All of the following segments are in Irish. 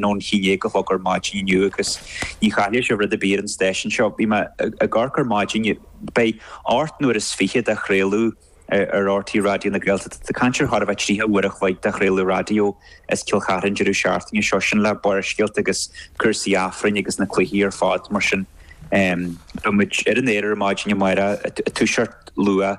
nó 'n chinéal a thug ar maidin inniu agus ní chaithfidh sé rud ar bith ar an stáisiún seo. Bhí mé ag comhaireamh ar maidin. Beidh ocht n-uair is fiche de chraoladh ar rte Raidió na Gaeltachta. Tá caint ar thart a bheith tríocha uair a chloig de chraoladh raidió as Cill Charthaigh deireadh seachtaine seo. Sin le Barrscéalta agus cúrsaí Aifrinn agus na cluichí ar fad mar sin. Beimid ar an aer ar maidin amárach, ag toiseacht luath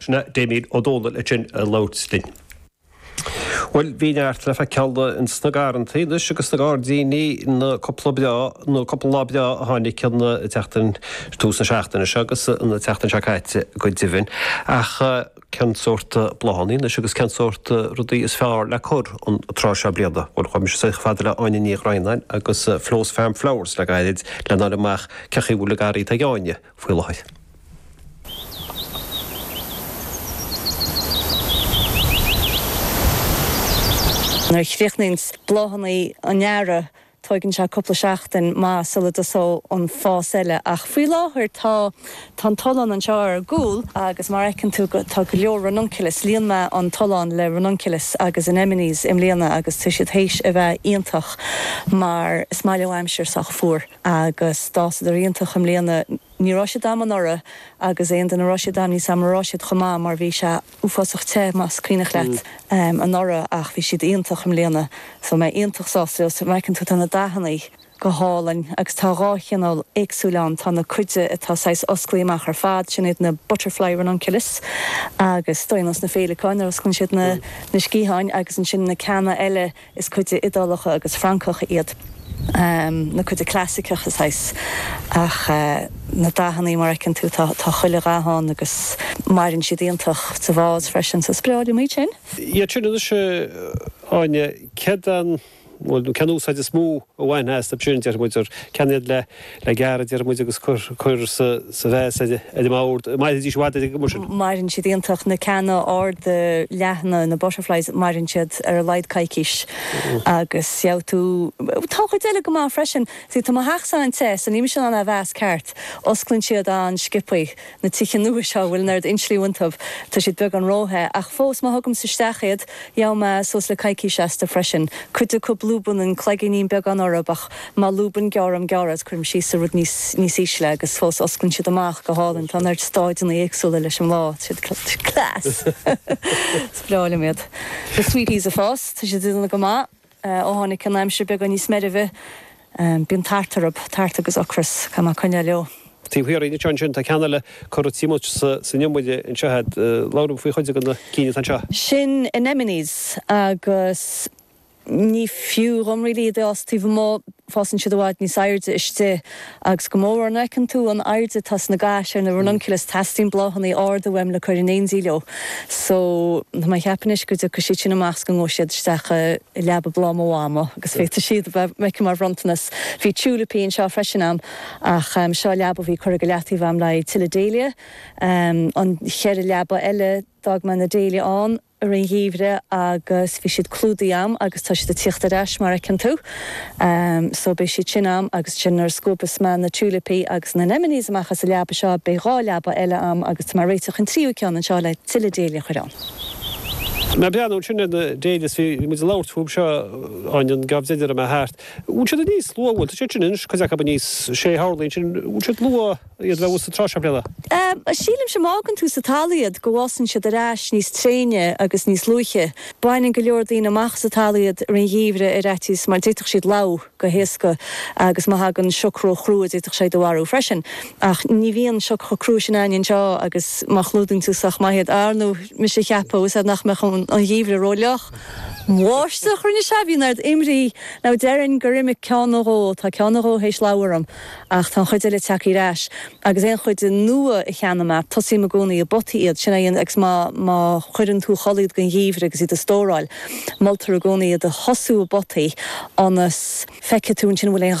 Sin é Damien Ó Dónaill ansin ag labhairt linn. Bhuel, bíonn neart le feiceáil ins na garraithe anois agus sna gairdíní na cúpla breá, nó cúpla lá breá a tháinig an tseachtain, tús na seachtaine seo agus an tseachtain seo caite go deimhin. Ach cén sórt bláthannaí anois agus cén sórt rudaí is fearr le cur an tráth seo bliana? Bhuel, chuir mise chomh fada le Áine Ní Dhroighneáin agus Flo's Farm Flowers le gairid lena fháil amach cé chaoi a bhfuil a garraí Tigh Áine. faoi láthair. Nuair a chríochnaíonns bláthanna an Earraigh tóigann sé cúpla seachtain, mhaith, sula dtosóidh an fás eile, ach faoi láthair tá an tollán anseo ar ár gcúl agus mar a fheiceann tú tá go leor ranunculus, líon mé an tollán le ranunculus agus anemones i mbliana agus tá siad théis a bheith iontach mar is maith leo aimsir sách fuar. Agus d'fhásadar iontach i mbliana. Ní raibh siad a'm anuraidh agus aon duine a raibh siad a'm níl fhios a'm an raibh siad chomh maith mar bhí sé uafásach te, más cuimhneach leat, anuraidh ach bhí siad iontach i mbliana. So tá mé iontach sásta leo. So fheiceann tú tá na dathannaí go hálainn agus tá dhá chineál éagsúil ann, tá na cinn atá saghas oscailte amach ar fad, sin iad na butterfly ranunculus agus tá siad nós na féileacáin a n-osclann siad na sciatháin agus ansin na ceanna eile, Is cinn Iodálacha agus Francacha iad na cinn chlasaiceacha saghas ach na dathannaí mar fheiceann tú tá tá chuile dhath ann agus maireann siad iontach sa vása freisin so is breá liom iad sin. Iad sin anois a Áine, céard an bhuel cén úsáid is mó? a bhainfeá astu sin déarfaidh muid, gur cinn iad le gearradh, a déarfaidh muid, agus cur sa vása ar an mbord. Mairfidís i bhfad ar an gcuma sin. Maireann siad iontach, na ceanna arda leathana, na butterflies, maireann siad ar a laghad coicís agus gheobhaidh tú, tá an chuid eile go maith freisin. 'S é, tá mo theachsa an-te, so níl mise in ann a mheas ceart. Osclaíonn siad an-sciobtha. na tithe nua seo a bhfuil an oiread insliú iontu, tá siad beagán ró-the, ach fós, má thugaimse isteach iad, gheobhaidh mé suas le coicís astu freisin. Cuid acu, lúbann an cloigínín beagán orthu, ach má lúbann, gearraim gearr é is, cuirim síos i rud níos, níos ísle, agus fós, osclann siad amach go hálainn. Tá an oiread stáideanna éagsúla leis an mbláth, tá sé class! Is breá liom iad. Na sweet peas fós, tá siad ag déanamh go maith. Ó tháinig an aimsir beagán níos meirbhe, bíonn tart orthu, tart agus ocras, caithfidh mé coinneáil leo. Taobh thiar de ansin, tá ceann eile curtha timpeall san iomaire anseo a'd. Labhair liom faoi chuid de na cinn atá anseo. Sin anemones agus ní fiú dhom really iad a fhás taobh amuigh. fásann siad i bhfad níos airde istigh, agus go mórmhór nuair a fheiceann tú an airde atá sna gais ar na ranunculus, teastaíonn bláthannaí arda uaim le cur in éindí leo. So, tá mé a' ceapadh anois go dtiocfaidh siad sin amach is go ngabhaidh siad isteach i leaba bhláth mo mhama agus féadfaidh siad a bheith aici mar bhronntanas. Bhí tiúilipí anseo freisin a'm, ach seo leaba a bhí curtha go leataobh a'm le haghaidh tuilleadh Dahlia. An cheithre leaba eile, d'fhág mé na Dahlia ann. i rith an gheimhridh agus bhí siad clúdaithe a'm agus tá siad a' tíocht ar ais mar fheiceann tú. So beidh siad sin a'm agus ansin nuair a scuabas mé na tiúilipí agus na anemones amach as an leaba seo beidh dhá leaba eile a'm agus tá mé a' réiteach an tríú ceann anseo le tuilleadh Dahlia a chur ann. Mé a' breathnú ansin ar na Dahlias bhí muid a' labhairt fúb seo, Áine, an geábh deireanach a raibh mé thart. An bhfuil siad aníos luath, bhfuil, tá siad sin anois, cuid acub aníos, sé horlaí ansin, an bhfuil siad luath? iad a bheith thuas an tráth seo bliana. Sílimse má fhágann tú sa talamh iad go bhfásann siad ar ais níos tréine agus níos luaithe. Baineann go leor daoine amach as an talamh iad i rith an gheimhridh ar fhaitíos mar d'fhéadfadh siad lobhadh go héasca agus má thagann sioc ró-chrua d'fhéadfadh sé iad a mharú freisin. Ach ní bhíonn sioc chomh crua sin ann anseo agus má chlúdaíonn tú sách maith iad, ar ndóigh mise a' ceapadh, is é nach mbeadh an geimhreadh ró-fhliuch. An bháisteach a rinne sé, bhí ina ábhar imní, nó déarfainn gur imigh ceann nó dhó, tá ceann nó dhó théis lobhadh orm. Ach tá an chuid eile tagtha ar ais, agus aon chuid nua a cheannaím, tosaím i gcónaí i bpotaí iad, sin é an, agus má chuireann tú a chodladh iad don gheimhreadh agus iad a stóráil, moltar i gcónaí iad a thosú i bpotaí ionas feicfidh tú ansin an bhfuil aon